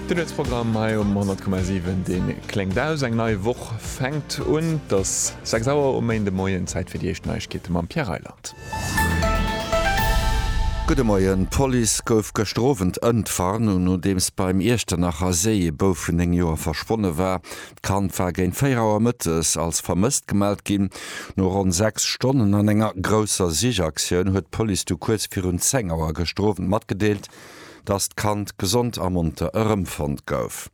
De Nuetsprogramm hei um 100,7 dee kléngt aus. Eng nei Woch fänkt un. Et ass 6 Auer um Méindemoien. Zäit fir déi éischt Neiegkeete mam Pierre Reyland. Gudde Moien. D'Police gouf gëschter Owend ëntwar, nodeems beim Iechternacher Séi e Bouf vun 9 Joer verschwonne war. D'Kand war géint 4 Auer mëttes als vermësst gemellt ginn. No ronn 6 Stonnen an enger grousser Sichaktioun huet d'Police du kuerz virun 10 Auer gëschter Owend matgedeelt, dass d'Kand gesond a monter erëmfonnt gouf.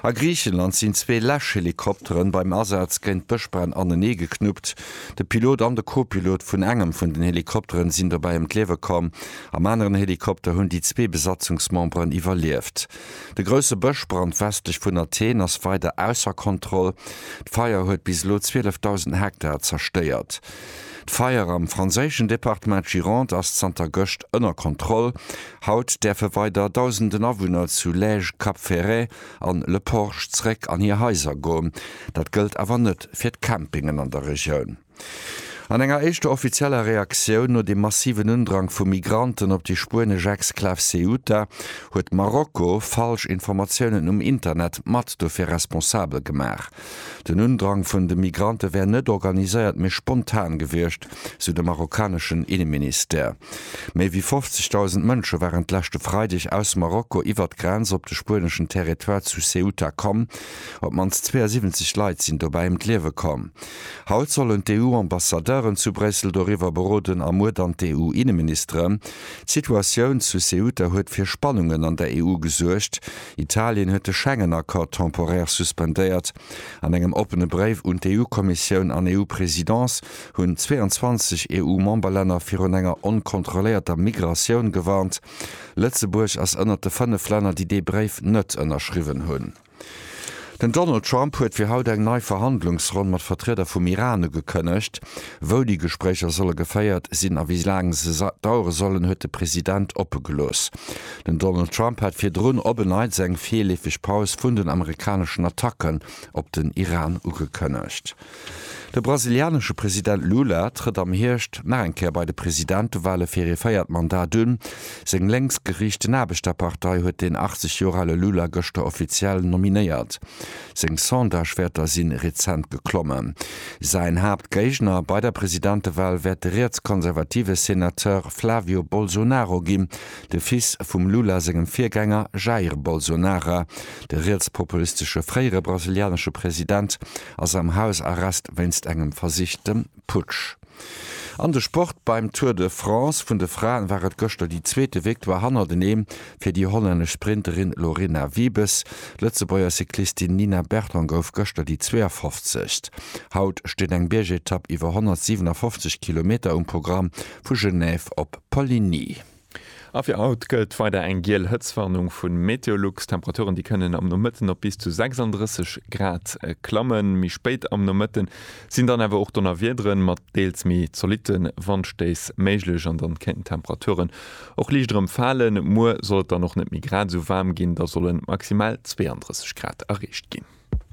A Griichenland sinn zwee Läschhelikopteren beim Asaz géint Bëschbränn anenee geknuppt. De Pilot an de Co-Pilot vun engem vun den Helikopteren sinn dobäi ëm d'Liewe komm. Am aneren Helikopter hunn déi zwee Besatzungsmemberen iwwerlieft. De grousse Bëschbrand westlech vun Athen ass weider ausser Kontroll. D'Feier huet bis elo 12.000 Hektar zerstéiert. D'Feier am franséischen Departement Gironde ass zanter gëscht ënner Kontroll. Haut däerfe weider dausenden Awunner zu Lège, Cap Ferret an Le Porge zeréck an hir Haiser goen. Dat gëllt awer net fir d'Campingen an der Regioun. An enger éischter offizieller Reaktioun no dem massiven Undrang vu Migranten op déi spuenesch Exklav Ceuta huet Marokko falsch Informatiounen um Internet mat dofir responsabel gemaach. Den Undrang vun de Migrante wär net organiséiert, mee spontan gewiescht, sou de marokkaneschen Inneministère. Méi wéi 50.000 Mënsche waren d'leschte Freideg aus Marokko iwwert d'Grenz op de spueneschen Territoire zu Ceuta komm. Op d'mannst 72 Leit sinn dobäi ëm d'Liewe komm. Haut sollen d'EU-Ambassadeuren zu Bréissel doriwwer beroden a muer dann d'EU-Inneministere. D'Situatioun zu Ceuta huet fir Spannungen an der EU gesuergt. Italien huet de Schengen-Accord temporär suspendéiert. An engem oppene Bréif un d'EU-Kommissioun an EU-Presidence hunn 22 EU-Memberlänner virun enger onkontrolléierter Migratioun gewarnt. Lëtzebuerg ass ënnert de fënnef Länner, déi dee Bréif net ënnerschriwwen hunn. Den Donald Trump huet fir haut eng nei Verhandlungsronn mat Vertrieder vum Iran ugekënnegt. Wou déi Gespréicher solle geféiert sinn a wéi laang se dauere sollen, huet de President oppe gelooss. Den Donald Trump hat virdrun op en Neits eng virleefeg Paus vun den amerikaneschen Attacken op den Iran ugekënnegt. De brasilianesche President Lula trëtt am Hierscht nach eng Kéier bei de Presidentewale fir ee véiert Mandat un. Seng lénks geriichten Aarbechterpartei huet den 80 Joer ale Lula gëschter offiziell nominéiert. Seng Sondagewäerter si rezent geklommen. Säin Haaptgéigner bei der Presidentewal wäert de rietskonservative Senateur Flávio Bolsonaro ginn, de Fils vum Lula sengem Virgänger Jair Bolsonara. De rietspopulistesche fréiere brasilianesche President ass am Hausarrest wéinst engem versichtem Putsch. An de Sport, Beim Tour de France vun de Fraen war et gëschter déi zweete Victoire hannerteneem fir déi hollännesch Sprinterin Lorena Wiebes. D'Lëtzebuerger Cyclistin Nina Berton gouf gëschter déi 52. Haut steet eng Biergetapp iwwer 157 Kilometer um Programm, vu Genève op Poligny. A fir haut gëllt weider eng giel Hëtztwarnung vu Meteolux. D'Temperaturen, déi kënnen am Nomëtten op bis zu 36 Grad klammen. Méi spéit am Nomëtte sinn dann awer och Donnerwiederen mat deels méi zolitte Wandstéiss méiglech an dann kéinten d'Temperaturen och liicht erëm falen. Muer soll et dann och net méi grad esou waarm ginn, da sollen maximal 32 Grad erreecht ginn.